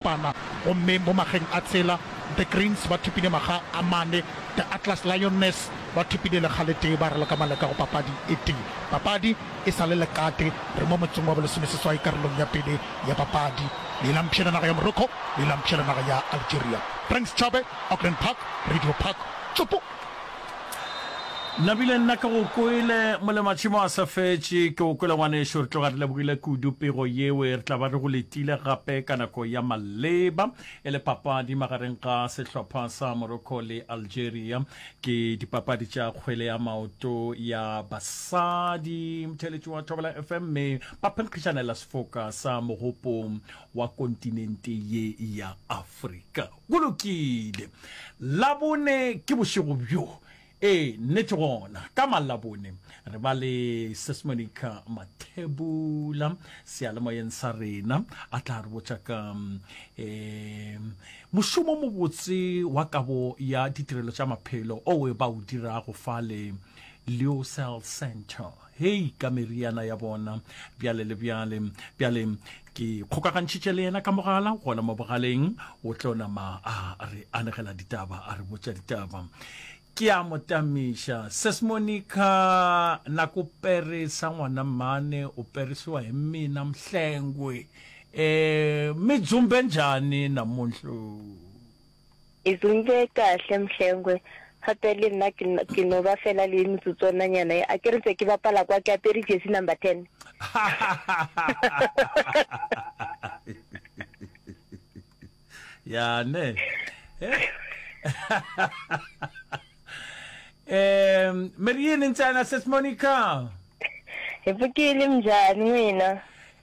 Pana, gomme mo mageng a tsela, The Greens ba thopile maga a mane, The Atlas Lioness ba thopile lekga le tee, ba re le ka maleka go papadi e tee. Papadi e sa le lekate, re mo motseng wa bolesomeseswai karolong ya pele ya papadi. Leelang mpšhele naga ya Morocco, leelang mpšhele naga ya Algeria. Frank Schabe, Auckland Park, Radio Park, Tšopo! Nabile nna ke go kwele molematšhemo a sa fetše ke go kwele ngwanešu re tloga re lebogile kudu pego yewe re tla ba re go letile gape ka nako ya maleba e le papadi magareng ga sehlopha sa Morocco le Algeria ke dipapadi tša kgwele ya maoto ya basadi motheletši wa Thobela FM mme ba phenkgišanela sefoka sa mogopong wa kontinente ye ya Afrika Go lokile. Labone ke bošego bjo. Ee, nnete gona. Ka Malabone re ba le Seismonic Mathebula seyalemoyeng sa rena. A tla re botša ka um mošomo o mobotse wa kabo ya ditirelo tša maphelo oe ba o dirago fale Leocell Centre. Hei, ka meriana ya bona, bjale le bjale. Bjale ke kgokagantšhitše le yena ka mogala, gona mo bogaleng, o tlo nama a re anegela ditaba, a re botša ditaba. Ke a mo tamiša. Ses Monica, na ko perisa ngwana mane, o perisiwa hi mina Mhlengwe. Eh, mi dzumbe njhani namuntlhu? E tsogile kahle Mhlengwe, gape le nna ke no ba fela le motsotsonanyana e, a ke re ntse ke bapala kwa ke apere jersey number ten. ya ne um merieni ntsana sis monica epokile mnjani wena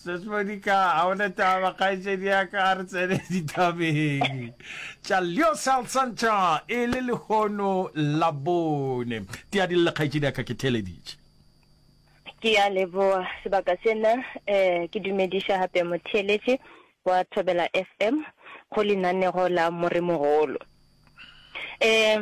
Sesmodika a o ne taba kgaetšedi ya ka a re tsene ditabeng tša leo salsantšha e le lehono la bone tea di le kgaetšedi ya ka ke theleditše ke ya leboa sebaka sena um ke dumediša gape motheeletše Kwa Thobela FM go lenanego la Moremogolo. Eh,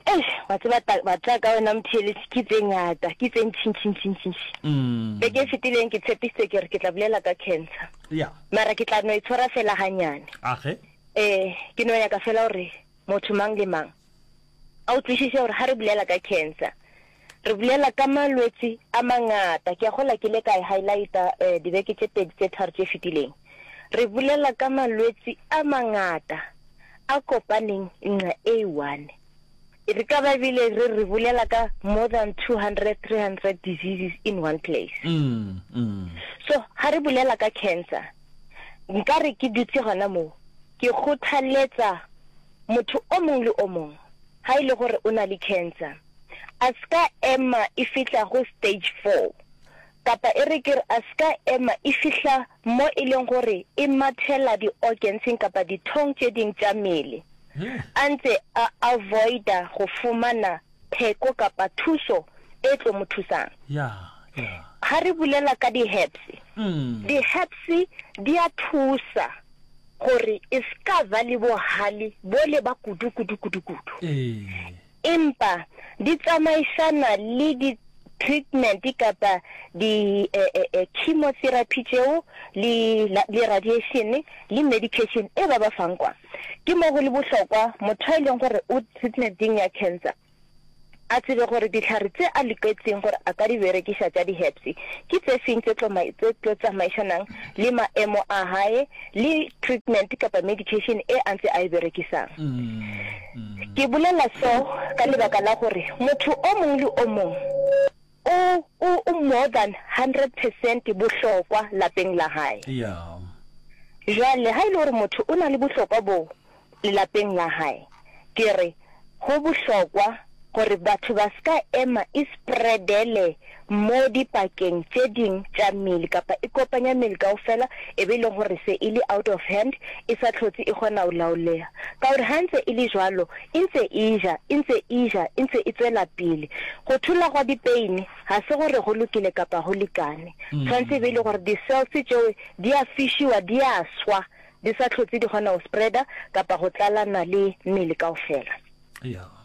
eish, wa tseba ta- ba tla ka wena Mthelis ke tse ngata, ke tse ntši ntši ntši ntši ntši. Mm. Beke e fetileng ke tshepisitse ke re ke tla bolela ka cancer. Ya. Mara ke tla no e tshwara fela ganyane. Age. Eh, ke no nyaka fela gore motho mang le mang a utlwisise gore ga re bolela ka cancer, Re bulela ka malwetsi a mangata. Ke a gola ke ile ka e highlighta dibeke tše pedi tše tharo tše fetileng. Re bulela ka malwetsi a mangata a kopaneng nqa e one. Re ka ba ebile re re bulela ka more than 200, 300 diseases in one place. So ha re bulela ka cancer, nka re ke dutse gona moo, ke kgothaletsa motho o mong le o mong ha e le gore o na le cancer, a se ka ema e fihla go stage four, kapa e re ke re a se ka ema e fihla mo e leng gore e mathela di-organsing kapa dithong tše ding tša mele, a ntse a avoida go fumana pheko kapa thuso e tlo mo thusang. Ga re bulela ka di-herbs, di-herbs di a thusa gore e se ka ba le bohale bole ba kudu-kudu-kudu-kudu. Empa di tsamaišana le di treatment kapa di chemotherapy tšeo le le radiation le medication e ba ba fang kwa. Ke mo go le bohlokwa motho a e leng gore o treatmenting ya cancer a tsebe gore dihlare tse a loketseng gore a ka di berekiša tša di herbs ke tse feng tse tlo tse tlo tsamaišanang le maemo a hae le treatment kapa medication e a ntse a e berekisang. Ke bolela so ka lebaka la gore motho o mongwe le o mongwe o, o, o more than hundred percent bohlokwa lapeng la gae. Jwale ga e le gore motho o na le bohlokwa boo lelapeng la gae, ke re go bohlokwa gore batho ba se ka ema e spreadele Mo dipakeng tše ding tša mmele, kapa e kopanya mmele kaofela, e be e le gore se e le out of hand, e sa hlotse e kgona go laolega. Ka gore ga ntse e le bjalo, e ntse e ja, e ntse e ja, e ntse e tšwela pele. Go thola gwa dipeine ga se gore go lokile kapa go lekane. Tshwanetse e be e le gore di-cells tšeo di a fišiwa, di a swa, di sa hlotse di kgona go spreader kapa go tlalana le mmele kaofela.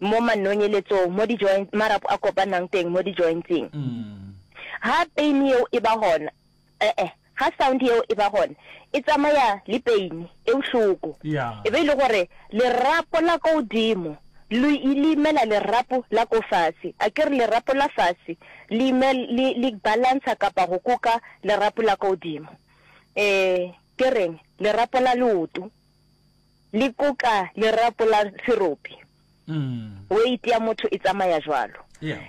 mo manonyeletsong, mo di-joint, marapo a kopanang teng mo di-jointseng. Ha pain yeo e ba gona, e-e, ha sound yeo e ba gona, e tsamaya le pain, e bohloko. E be e le gore lerapo la ko godimo le le imela lerapo la ko fase, a ke re lerapo la fase le ime, le, le balantsha kapa go kuka lerapo la ko godimo, um ke reng, lerapo la leoto. le koka lerapo la serope. Weight ya motho e tsamaya jwalo.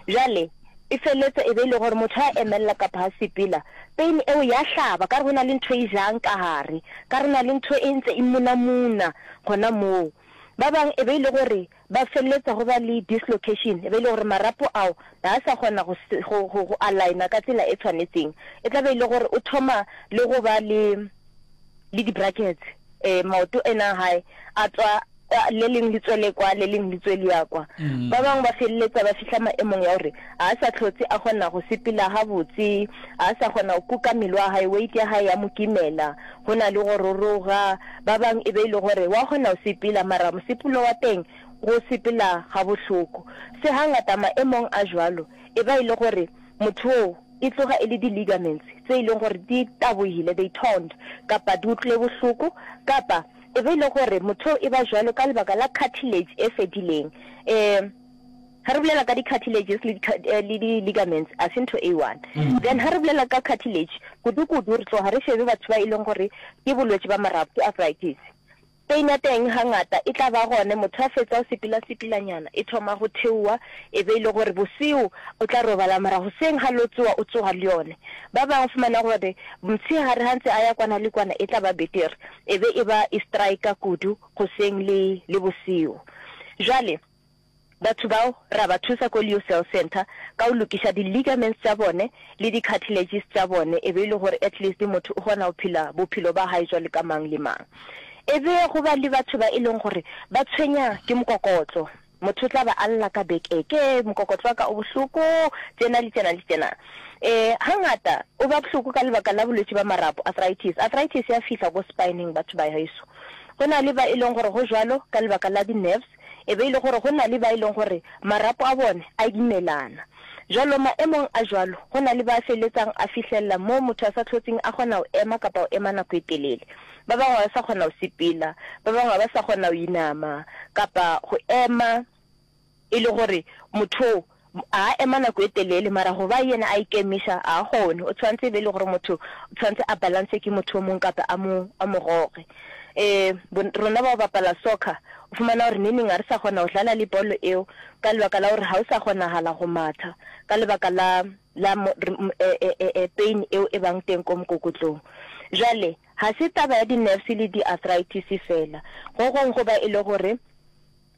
Jwale e feletse e be e le gore motho a emelela kapa ha sepela pain eo ya hlaba ka re go na le ntho e jang ka gare ka re na le ntho e ntse e munamuna gona moo ba bang e be e le gore Ba feleletsa go ba le dislocation, e be e le gore marapo ao ga a sa kgona go, go, go, go aligna ka tsela e tshwanetseng. E tla be e le gore o thoma le go ba le, le di-brackets. Um, maoto ena a gae a tswa kwa, le leng le tswele kwa, le leng le tswe le ya kwa. Ba bangwe ba feleletsa ba fihla maemong ya gore ga a sa hlotse a kgona go sepela gabotse, ga a sa kgona go kuka mmele wa gae, weight ya gae ya mo kimela. Go na le go roroga, ba bang e be e le gore wa kgona go sepela, mara mosepelo wa teng go sepela ga bohloko. Se hangata maemong a jwalo e ba e le gore motho oo e tloga e le di-ligaments tse e leng gore di tabohile, they torn, kapa di utlwile bohloko, kapa e be e le gore motho oo e ba jwalo ka lebaka la cartilage e fedileng. E. Ha re bolela ka di-cartilages le di, le di-ligaments, a se ntho e one. Then ha re bolela ka cartilage, kudu-kudu re tloga re šebe batho ba e leng gore ke bolwetši ba marapo, ke arthritis. Pain ya teng ga ngata e tla ba gone motho a fetsa o sepila-sepilanyana, e thoma go theowa e be e le gore boseo o tla robala mara goseng ga lo tsowa o tsoga le yone. Ba bangwe o fumana gore mtshegare ga ntse a ya kwana le kwana e tla ba betere e be e ba e striker kudu goseng le, le boseo. Jwale. Batho bao ra ba thusa ko Leo Cell Centre ka go lokiša di ligaments tša bone le di cartilages tša bone e be e le gore at least motho o kgona go phela bophelo ba gae jwalo ka mang le mang. E be go ba le batho ba e leng gore ba tshwenya ke mokokotlo, motho o tla ba a lla ka beke ke re mokokotlo wa ka o bohloko tjena le tjena le tjena. Um hangata o ba bohloko ka lebaka la bolwetši ba marapo, arthritis. Arthritis ya fihla ko spine-eng batho ba heso. Go na le ba e leng gore go jwalo ka lebaka la di-nerves E be e le gore go na le ba e leng gore marapo a bone a imelana. Jalo maemong a jalo, go na le ba a feletsang a fihlelela moo motho a sa tlhotseng a kgona go ema kapa go ema nako e telele. Ba bangwe ga ba sa kgona go sepela, ba bangwe ga ba sa kgona go inama kapa go ema e le gore motho oo A ema nako e telele, mara go ba yena a ikemiša, a a kgone. O tshwanetse e be e le gore motho o tshwanetse a balance ke motho o mong kape a mo, a mo goge. E, bo, rona ba go bapala soccer, o fumana gore neneng ga re sa kgona go dlala le bolo eo, ka lebaka la gore ga o sa kgonagala go matha, ka lebaka la, la mo, re, m, e, e, e, e, pain eo e bang teng ko mokokotlong. Bjale, ga se taba ya di-nerves le di-arthritis feela. Go gongwe go ba e le gore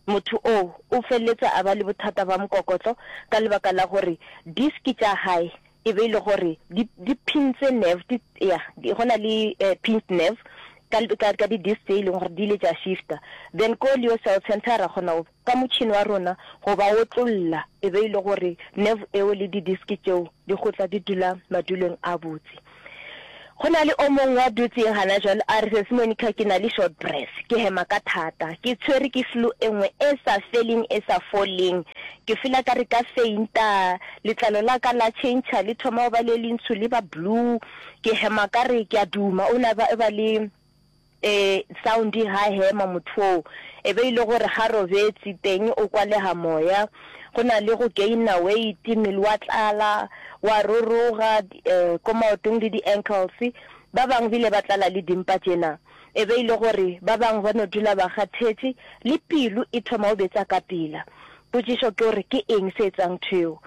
Motho oo o feleletša a ba le bothata bja mokokotlo ka lebaka la gore disk tša gae e be e le gore di, di phintse nerve, di, ya, di, go na le eh, pinched nerve ka, ka, ka di-disk tse e leng gore di ile tša shifta. Then ko leo cell center ra kgona go, ka motšhini wa rona go ba otlolla e be e le gore nerve eo le di-disk tšeo di go tla di dula madulong a botse. Go na le o mongwe wa dutseng gana jalo a re, Sesi Monica, ke na le short breath. Ke hema ka thata. Ke tshwere ke flu e nngwe e sa feleng e sa foleng. Ke feel a ka re ka fainta. Letlalo la ka la tšhentšha le thoma go ba le lentsho le ba blue. Ke hema ka re ke a duma. O ne a ba le. E sound ha hema mothoo. E be e le gore ga robetsi teng o kwalega moya. Go na le go gainer weight, mmele wa tlala, wa roroga ko maotong le di ankles. Ba bangwe bile ba tlala le dimpa tjena. E be e le gore ba bangwe ba no dula ba kgathetše, le pelo e thoma go betsa ka pela. Potšišo ke gore ke eng se etsang ntho eo?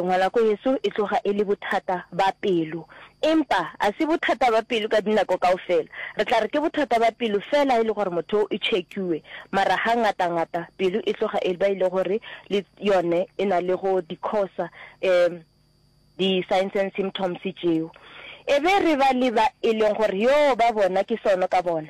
Ngwanako yeso e tloga e le bothata ba pelo. Empa a se bothata ba pelo ka dinako kaofela. Re tla re ke bothata ba pelo fela e le gore motho o check-iwe. Mara ha ngata ngata pelo e tloga e ba e le gore le yone e na le go di cause-a di signs and symptoms tšeo. E be re ba le ba e leng gore yoo ba bona ke sono ka bona.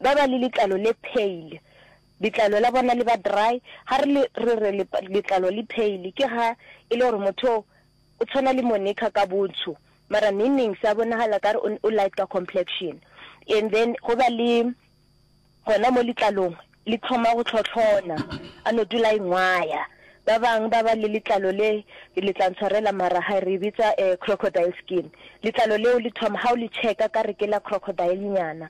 Ba ba le letlalo le pale, letlalo la bona le ba dry. Ga re le re re letlalo le pale ke ga e le gore motho o o tshwana le Monica ka bontsho mara neng neng sa bonagala ka re o light ka complexion. And then go ba le gona mo letlalong le tlhoma go tlhotlhona a no dula a ingwaya. Ba bang ba ba le letlalo le, le tla ntshwarela mara hai re e bitsa eh, crocodile skin. Letlalo leo le thoma, ha o le checka ka re ke la crocodile nyana.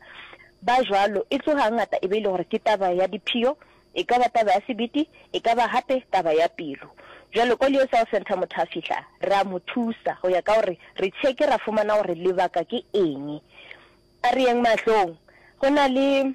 Ba jwalo, e tsoga hangata e be e le gore ke taba ya diphio, e ka ba taba ya sebete, e ka ba hape taba ya pelo. Jwale ko Leo Cell Centre motho a fihla, re a mo thusa go ya ka gore re checke ra fumana gore lebaka ke eng. A re yeng mahlong, go na le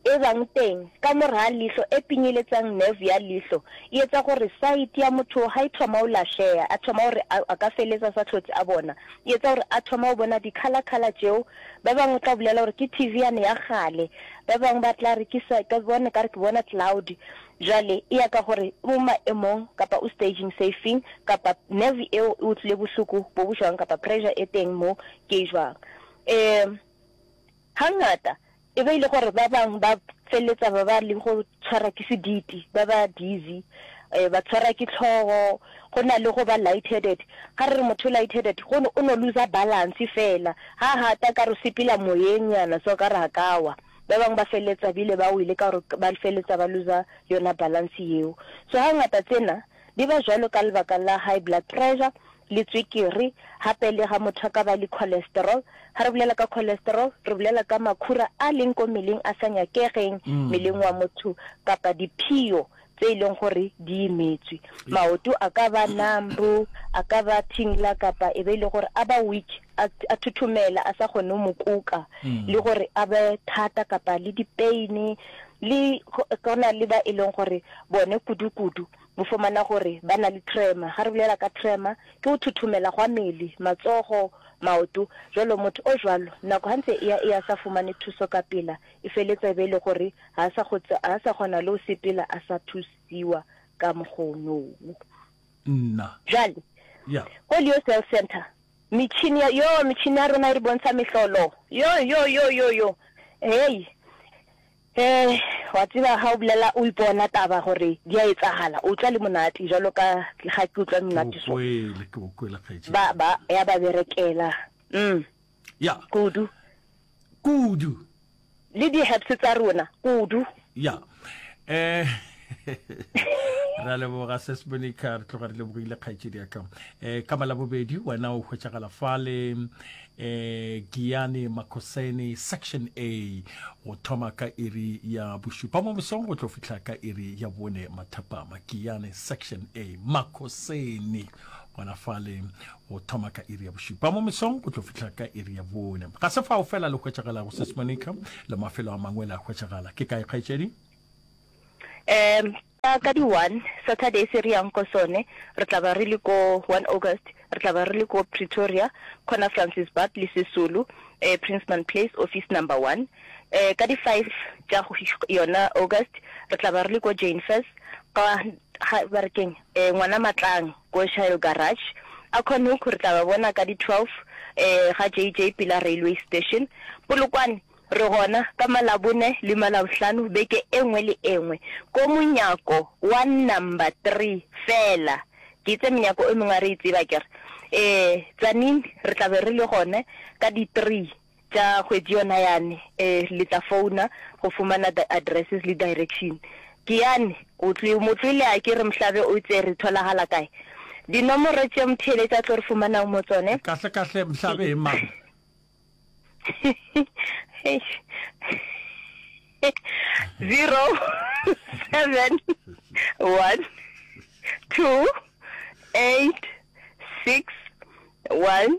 Ebang teng, ka mor'a lihlo e pinyeletsang nerve ya lihlo e etsa gore sight ya motho ha e thoma ho lahleha, a thoma gore a, a ka feletsa a sa hlotse a bona. E etsa gore a thoma ho bona di-colour colour tšeo. Ba bangwe o tla bolela gore ke TV yane ya kgale, ba bangwe ba tla re ke sa, ke bona ekare ke bona cloud. Jwale e ya ka gore o maemong kapa o staging se feng, kapa nerve eo e utlwile bohloko bo bo jwang kapa pressure e teng moo ke e jwang. Um Hangata, e be e le gore ba bang ba feleletsa ba ba le go tshwarwa ke sediti, ba ba dizzy, um ba tshwarwa ke tlhogo, go na le go ba light-headed. Ga re re motho o light-headed, go no, o no looser balance fela, ha hata ka re o sepela moyeng nyana so ka re a ka wa. Ba bang ba feleletsa bile ba wele ka gore ba feleletsa ba looser yona balance yeo. So hangata tsena Di ba jwalo ka lebaka la high blood pressure le tswekere, gape le ga motho a ka ba le cholesterol. Ga re bolela ka cholesterol, re bolela ka makhura a leng ko meleng a sa nyakegeng meleng wa motho, kapa diphio tse e leng gore di imetswe. Maoto a ka ba numb, a ka ba tingler, kapa e be e le gore a ba weak. a, a thuthumela a sa kgone go mo kuka mm. le gore a be thata kapa le dipeine le go na le ba e leng gore bone kudu-kudu bo fomana gore ba na le trema ga re bolela ka trema ke go thuthumela gwa mele matsogo maoto jalo motho o jalo nako gantse e ya e ya sa fumane thuso ka pela e feletse be e le gore ga sa go ga sa gona le o sepela a sa thusiwa ka mogono nna jale yeah. go leo cell center Metšhini ya, yoo, metšhini ya rena e re bontšha mehlolo. Yo, yo, yo, yo, yo. Hei. He, wa tseba ga o bolela, o ipona taba gore di a etsagala, o tšwa le monate, jalo ka ga ke utlwa monate so. Ke o kwele, ke o kwele, kgaetšedi. Ba, ba, ya ba berekela. Mm. Ya. Kudu. kudu le di herbs tsa rona kudu ya eh ra leboga se sebonika re tloga re lebogile kgaetšedi ya ka um ka malabobedi wena o hwetšagala fale um eh, giane makosene section a go thoma ka iri ya bošupa mo mosong go tlo fitlha ka iri ya bone mathapama giane section a makosene gona fale go thoma ka iri ya bošupa mo mesong go tlo fihla ka iri ya bone ga se fao fela le hwetšagalago sesmonica le mafelo a mangwe le a hwetšagala ke kae kgaetšedi um ka ka di-one saturday se re yang ko sone re tla ba re le ko one august re tla ba re le ko pretoria khona francis bab le sesulu um princeman place office number one um ka di-five tša yona august re tla ba re le ko jane first ka Ga ba re keng? Eh, ngwana Matlang, ko Shire Garage. A Khonhook re tla ba bona ka di 12, eh, ga JJ pela railway station. Polokwane re gona ka Malabone le Malabohlano beke e nngwe le e nngwe. Ko monyako wa number three feela. Ke itse menyako e mengwe a re e tseba, ke re. Eh, Tzaneen re tla be re le gone ka di three. Tša kgwedi yona yane, eh, le tla founa go fumana di addresses le direction. Ke yane, o tlo mo tlole a ke re Mhlabe o tsere tholagala kae? Dinomoro tše Mtheeletša a tlo re fumanang mo tsone. Kahle kahle Mhlabe e mang? Zero, seven, one, two, eight, six, one,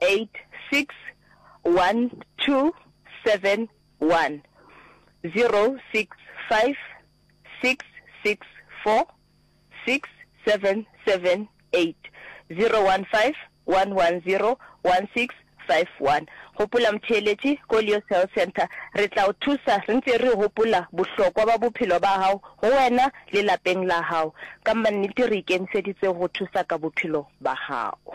086-127-116-567-8 Gopola motheeletši, Koleos Health Centre, re tla o thusa re ntse re gopola bohlokwa bja bophelo bja gago go wena le lapeng la gago. Ka mannete re ikemišeditse go go thusa ka bophelo bja gago.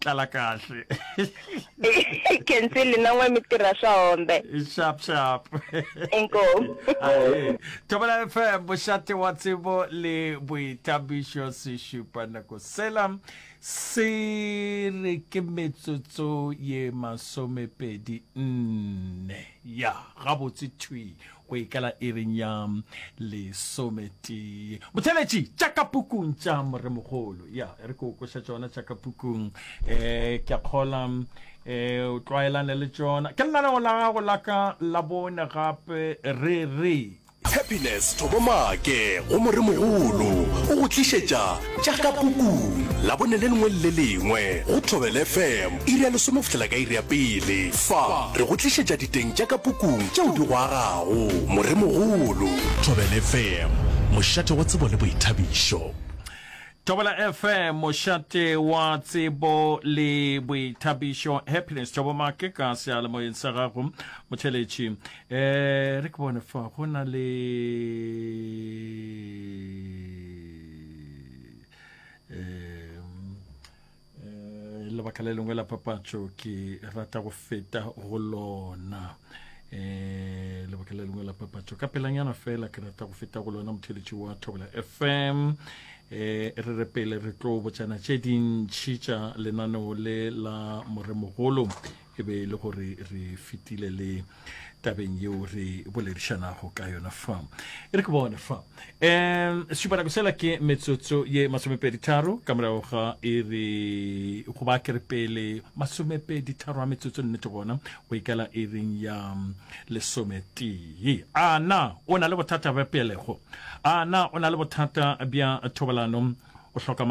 tlala kahle kensi linangwe mitira swa hombe sharp sharp enko thobela fm bošate wa tsebo le boithabišo se šupa nako sela se re ke metsotso ye masomepedi nne ya gabotse thwi Go e kala iring ya lesometee. Botheletši, tša ka pukung tša Moremogolo. Ya, e re ke o kweša tšona tša ka pukung. E, ke a kgola e, o tlwaelane le tšona. Ke lenaneo la gago la ka la bone gape, re re. Happiness Thobomake go Moremogolo o go tlišetša Tša ka Pukung, Labone le lengwe le le lengwe, go Thobela FM, iri ya lesome go fihlela ka iri ya pele. Fa re go tlišetša diteng tša ka Pukung tšeo di go agago. Moremogolo. Thobela FM, mošate wa tsebo le boithabišo. Thobela FM, mošate wa tsebo le boithabišo. Happiness Thabo Make ka seyalemoyeng sa gago, motheletši. Eh, re ke bone fa go na le lebaka le lengwe la papatšo ke rata go feta go lona um lebaka le lengwe la papatšo ka pelanyana fela ke rata go feta go lona motheletši wa thobela fm um re re pele re tlo botšana tše dintšhi tša lenaneo le la moremogolo e be e le gore re fetile le tabeng yeo re boledišanago ka yona fa e re ke bone fa um sesupanako sela ke metsotso ye masomepeditharo ka morago ga e re go ba ke re pele masomepeditharo a metsotso nnete gona go ikela e reng ya lesometee a na o na le bothata bja pelego a na o na le bothata bja thobalano o hloka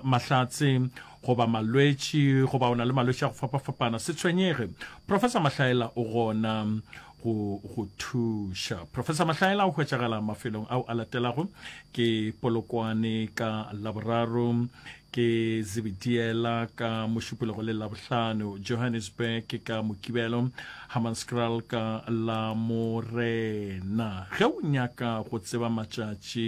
mahlatse goba malwetši goba o na le malwetši a go fapafapana se tshwenyege professor mahlaela o gona go go thuša professor mahlaela o hwetšagala mafelong ao a latelago ke polokwane ka laboraro ke zibidiela ka mošupologo le labohlano johannesburg ke ka mokibelo hammanscral ka la morena ge o nyaka go tseba matšatši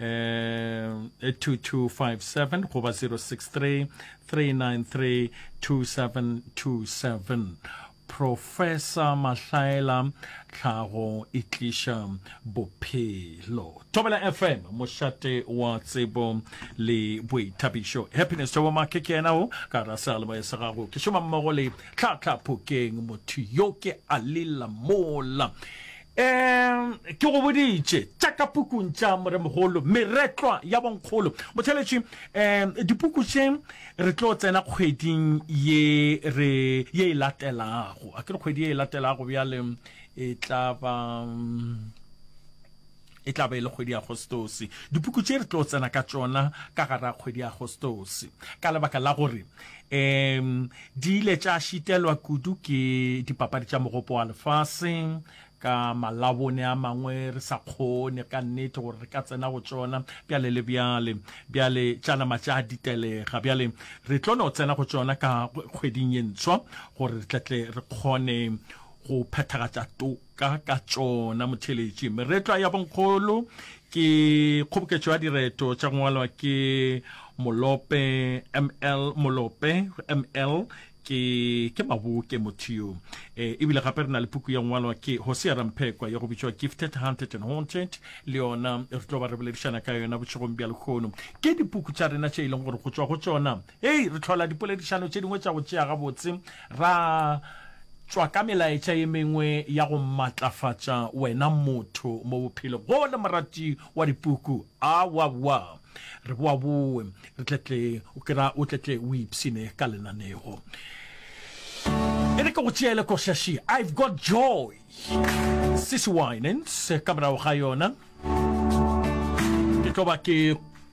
um, 2257 goba 063 393 2727 professor mahlaela tlhago e tliša bophelo tobela fm mošate wa tsebo le boithabišo happiness tobo make ke yena o ka ra sealeboe sa gago ke šoma mmogo le tlhatlhaphokeng motho yo ke a lela mola Ee, ke go boditše tša ka pukung tša Moremogolo, Meretlwa ya Bonkgolo. Motheletši, um dipuku tše re tlo tsena kgweding ye re ye e latelago, a ke re kgwedi ye e latelago bjale e tla ba. E tla ba e le kgwedi ya Agostose. Dipuku tše re tlo tsena ka tšona ka gara kgwedi ya Agostose ka lebaka la gore um di ile tša šitelwa kudu ke dipapadi tša mogopo wa lefase ka malabone a mangwe re sa kgone ka nnete gore re ka tsena go tšona bjale le bjale bjale tša nama tša ditelega bjale re tlo no tsena go tšona ka kgweding ye ntshwa gore re tletle re kgone go phethagatša to ka ka tšona motheletši. Meretlwa ya bonkgolo ke kgoboketšo ya direto tša ngwalwa ke Molope ML. Molope ML ke ke maboke motho yo e ebile gape re na le puku ya ngwalwa ke Hosea Ramphekwa ya go bitšwa Gifted Hunted and Haunted le yona re tlo ba re boledišana ka yona bošegong bja lekgono ke dipuku tša rena tše e leng gore go tšwa go tšona Hei, re hlola dipoledišano tše dingwe tša go tšea gabotse, ra tšwa ka melaetša ye mengwe ya go matlafatša wena motho mo bophelo go le morati wa dipuku. Awawa, re boa bowe, re tletle o kira o tletle o ipshine ka lenanego. E re ke go tšeele košaši I've Got Joy, Cissy Winans, ka morago ga yona ke tlo ba ke